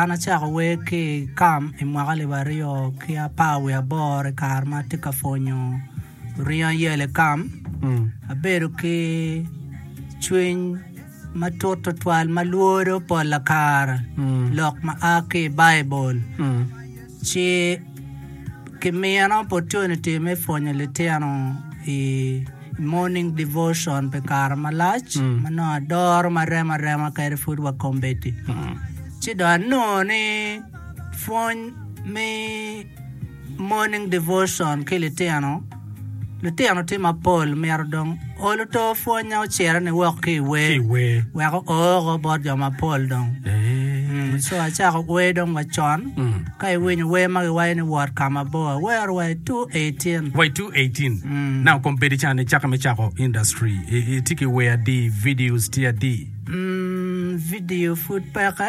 An acako wer ki i kam i mwaka alip aryo ki apar wiye aboro i kare ma atye ka pwonyo ringo ayel i kam, abedo ki cwiny matut tutwal ma lworo pol kare lok ma a ki i Baibul. Ci kimiyo opportunity me pwonyo litino i morning devotion pi kare malac ma nongo adoro maremo arema kadi pud wa kombeddi. Ci dong anongo ni pwony me morning devotion ki litino Litino tye mapol myero dong olu to pwonya ocire ni wok ki iwer wek ooko bot jo mapol dong co acako wer dong wa con ka iwinyo wer ma giwayo ni wot ka mabor awero wa i two eighteen wa i two eighteen na okom bedi cani ni caka me cako industry itye ki wer adi videos tye adi video pud peke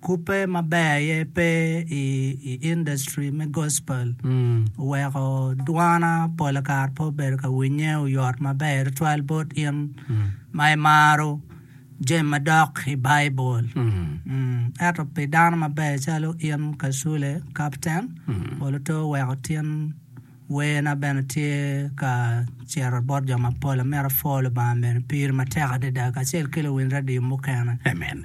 Kubbe maber aye pe i industry me gospel oweko dwana pol kare pe obedo ka winye oyot maber tutwal bot in ma imaro jami madok i Baibul. Ento pi dano maber calo in Kasule, Kapten, polo twero weko tin. Werna bene tye ka cito bot jo mapol. Amito apwoo Lubanga mene piri matek adada kacel ki luwiny radio mukene. Amen.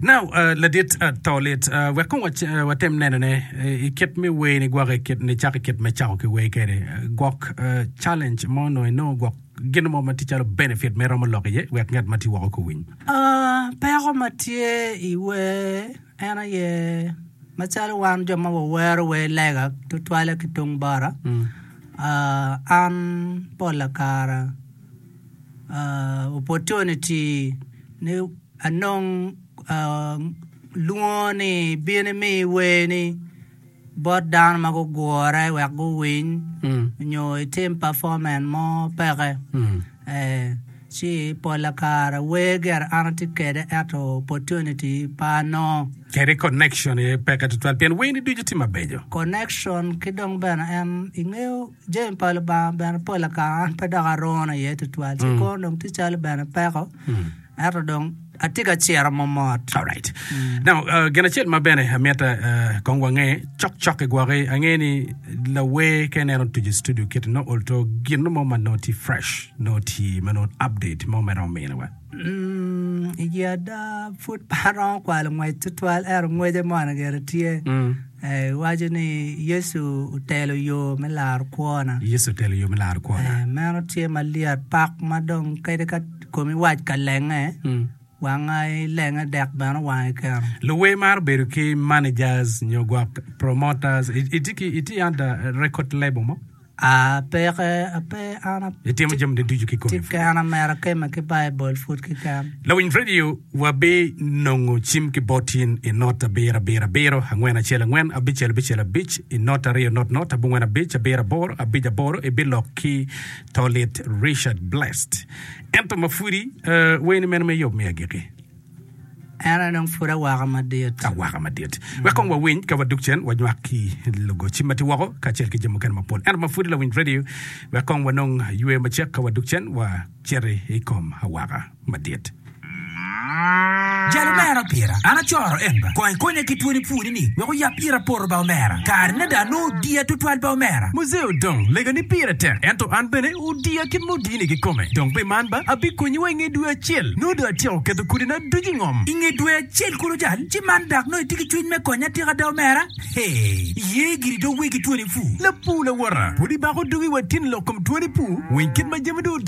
Now, uh, ladit uh, to lit. Uh, wek kong wac- uh, watem nenone uh, i kit me wer ni gwok i kit ni cako i kit me cako ki wer kede. Uh, gwok uh, challenge mo no inongo gwok gin mo ma tye calo benefit me romo lok iye wek ngat ma tye woko ko winy. Ah, peko ma tye i wer En aye, macalo wan jo ma wawero wer lega tutwalle ki tung bota, an pol lakara opportunity ni anong lwongo ni ibino imi wer ni. bot dano ma gugure wek guwiny nyo itim pafomen mo peke. Ci pola kare wer gire an atye kede eto opportunity pe anongo. Kede connection aye peke tutwal pien werni ducu tye mabeco. Connection ki dong bene en ingeyo. Jami pa Lubanga bene pol akaka an pe dok arone iye tutwal ci kwo dong tye calo bene peko ento dong atye ka ciro momot. Alright. Now, uh, gin acel ma bene amyete uh, kong wange cok cok i gwoki ange ni lawer ka ineno otuco i studio kit no olto gin mo ma no tye fresh no tye ma no update mo ma iromo miniwa Mm, i ada pud pa aromo kwalo ngwec tutwal ero ngwece mona gire tye Iwaco ni, Yecu otelo yo me laro kwona. Yecu otelo yo me laro kwona. Meno tye ma lyet pak ma dong kadi ka komi wac ka lenge, wanga ilenge dek bene owangi keno. Luwer maro bedo ki managers nyo gwok promoters. Itye ki record label mo? Apeke, ape an a. Itimo jami ni ducu ki kome. Keken amera keme ki Baibul pud keken. Lawiny radio wa bi nongo cim ki bot in i not abiro abiro abiro angwen acel angwen abicel abicel abic i not aryo not not abongwen abic abiro aboro abic aboro i bi lok ki to lit Richard Blessed ento ma pudi ee wer ni mene me yub me agiki. En aye dong pud awaka madit. Awaka madit. Wek kong wawiny ka wadok cen wanywak ki lugoci ma tye woko kacel ki jami mukene mapol. Ento ma pud lawiny radio, wek kong wanong yweyo macek ka wadok cen wacito i kom awaka madit. Jalo mera pira, an acoro en ba, kong ikonya ki twoni pwonyi. ni wek oyab ira poto ba omera. Kare ne dong anongo odiya tutwal ba omera. Muzee odong lega ni pire tek ento an bene odiya kit ma odini kikome. Dong pe man ba abikonyi wa inge dwe acel. Nongo dong atyeko keto kodina ducu ingom. Inge dwe acel kulu cal ci man dak nongo itye ki cwiny me konya atika ada omera? Hee, iye giri dong wegi twoni puu. Lapuu lawota, pud ibako dugi wa tin lok kom twoni puu? Winy kit ma jami dong odoko.